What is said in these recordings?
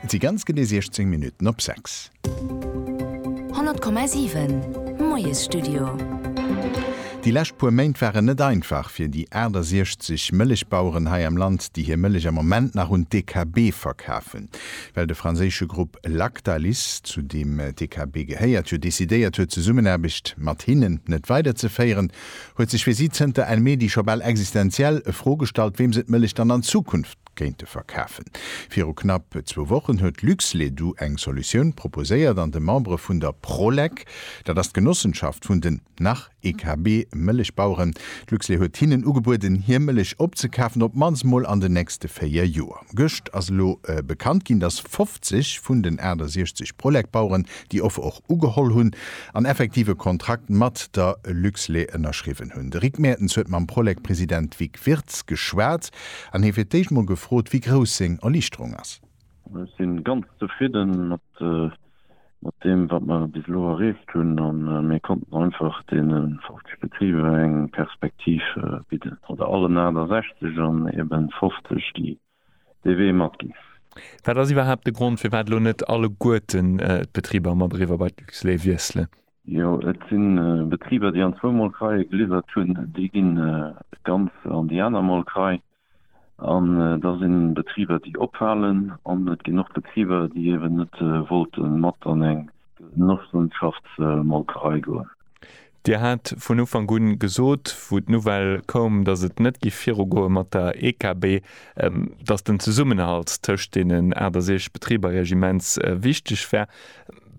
Et si ganz genee 16 Minutten op 6. 100,7, Moiesstudio. Déi lescht puer Méint waren net einfach fir déi 68 Mëllechbaueren hei am Land, déi hir Mëllech am Moment nach un d'DKB verkafen, well de franséische Grupp Lactalis, zu deem d'DKB gehéiert, jo decidéiert huet, d'Zesummenaarbecht mat hinnen net weiderzeféieren, huet sech fir si zënter en Medi scho bal existenziell e Fro gestallt, weem se d'Mëllech dann an Zukunft kéinte verkafen. Viru knapp zwou Wochen huet Luxledu eng Solutioun proposéiert an de Membere vun der Prolek, dat ass d'Genossenschaft vun den, nach, EKB Mëllechbaueren, d'Luxle huet hinnen ugebueden, hir Mëllech opzekafen, op d'mannst mol an den nächste véier Joer. Gëscht ass elo bekannt ginn, datt 50 vun den 68 Prolek-Baueren déi Offer och ugeholl hunn an effektiv e Kontrakt mat der Luxle ënnerschriwwen hunn. De Rick Mertens huet mam Prolek-President Vic Wirtz geschwat. An hie fir d'éischt mol gefrot, wéi grouss seng Erliichterung ass. Ech si ganz zefridden mat deem, wat mer bis elo erreecht hunn. A mir konnten einfach deene 50 Betriber eng Perspektiv bidden, oder allen 68 an ebe 50, déi dee Wee matginn. Wat ass iwwerhaapt de Grond, firwat elo net alleguerten d'Betriber mat Ereewer bei d'Luxlait wiesselen? Jo, et si Betriber, déi an zwou Molkereie geliwwert hunn, déi gi ganz an déi aner Molkerei. An da si Betriber, déi ophalen. An et ginn och Betriber, déi eeben net wollte mat an eng Genossenschaftsmolkerei goen. Dir hat vun Ufank u gesot, wou d'Nouvelle koum, datt et net géif virugoe mat der EKB, datt den Zesummenhalt tëscht deenen 68 Betriber immens wichteg wär.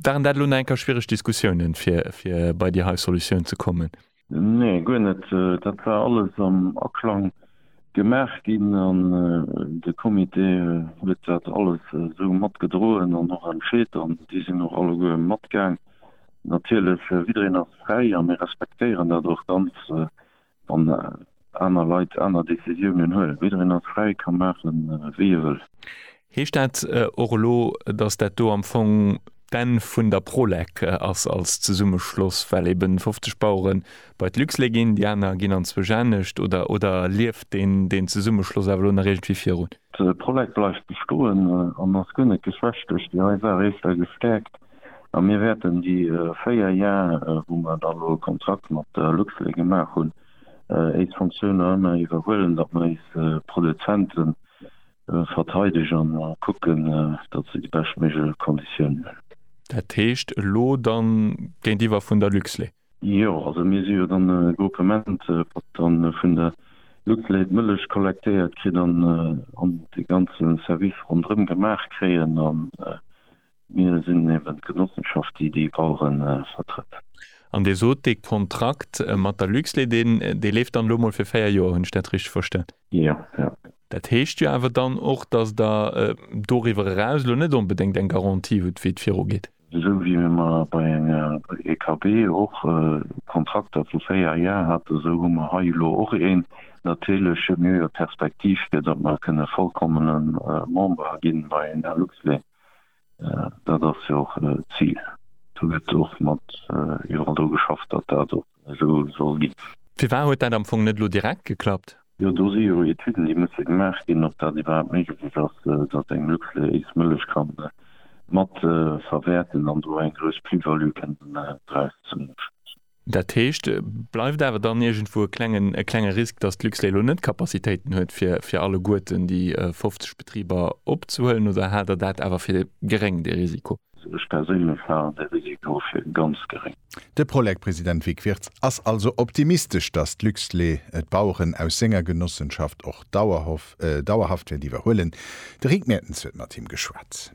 Waren dat elo nach eng Kéier schwiereg Diskussiounen, fir bei déi hei Solutioun ze kommen? Nee, guer net. Dat war alles am Aklang gemaach ginn an de Comité huet dat alles esou matgedroen an och entscheet an déi sinn och alleguer matgaang. Natierlech, jiddereen ass fräi a mir respektéieren dat och ganz. Wann aner Leit aner Decisiounen huelen, jiddereen ass fräi, ka maachen, wéi e wëll. Heescht dat och elo, datt dat do am Fong d'Enn vun der Prolec ass als Zesummeschloss, well eben 50 Bauere bei d'Luxlait ginn, déi aner ginn an zwou Janecht? Oder lieft deen Zesummeschloss awer elo nach iergendwéi virun? D'Prolec bleift bestoen an ass guer net geschwächt duerch déi nei Saach, eescht a gestäerkt. A mir wäerten déi véier Jar, wou mer dann elo e Kontrakt mat Luxlait gemaach hunn, éis Fonctionner ëmmer iwwerhuelen, datt mer éis Produzente verteidegen a kucken, datt se déi beschtméiglech Konditiounen hunn. Dat heescht elo dann géintiwwer vun der Luxlait? Jo, also mir si jo dann e Groupement, wat dann vun der Luxlait d'Mëllech kollektéiert kritt an de ganze Service ronderëm gemaach kréien. Mir sinn eben d'Genossenschaft, déi déi Baueren vertrëtt. An Dir sot, dee Kontrakt mat der Luxlait, deen, dee leeft dann elo mol fir véier Joer. Hunn ech dat richteg verstan? Jo, jo. Dat heescht jo awer dann och, dass Der doriwwer eraus elo net onbedéngt eng Garantie hutt, wéi et virugeet. Esou wéi mir mar bei enger EKB och Kontrakter vu véier Jar haten, esou hu mer hei elo och een. Natierlech hu mir jo Perspektiv, fir datt mer kënne vollkommene Member ginn bei enger Luxlait. Dat ass jo och d'Zil. Do gëtt och mat iwwerall dru geschafft, datt dat och esou soll ginn. Firwat huet dat am Fong net elo direkt geklappt? Jo, do si jo Etüden, déi musse gemaach ginn, ob dat iwwerhaapt méiglech ass, datt eng Luxlait Mëllech ka mat verwäerten an do eng grouss Plus-value kënnen draus zouschléissen. Dat heescht, bleift awer dann iergendwou e klenge Risk, dass d'Luxlait elo net d'Capacitéiten huet, fir alleguerten déi 50 Betriber opzehuelen? Oder haalt Der dat awer fir geréng, dee Risiko? Ech perséinlech halen dee Risiko fir ganz geréng. De Prolec-President Vic Wirtz ass also optimistesch, dass d'Luxlait d'Baueren aus senger Genossenschaft och dauerhaft wäert iwwerhuelen. De Rick Mertens huet mat him geschwat.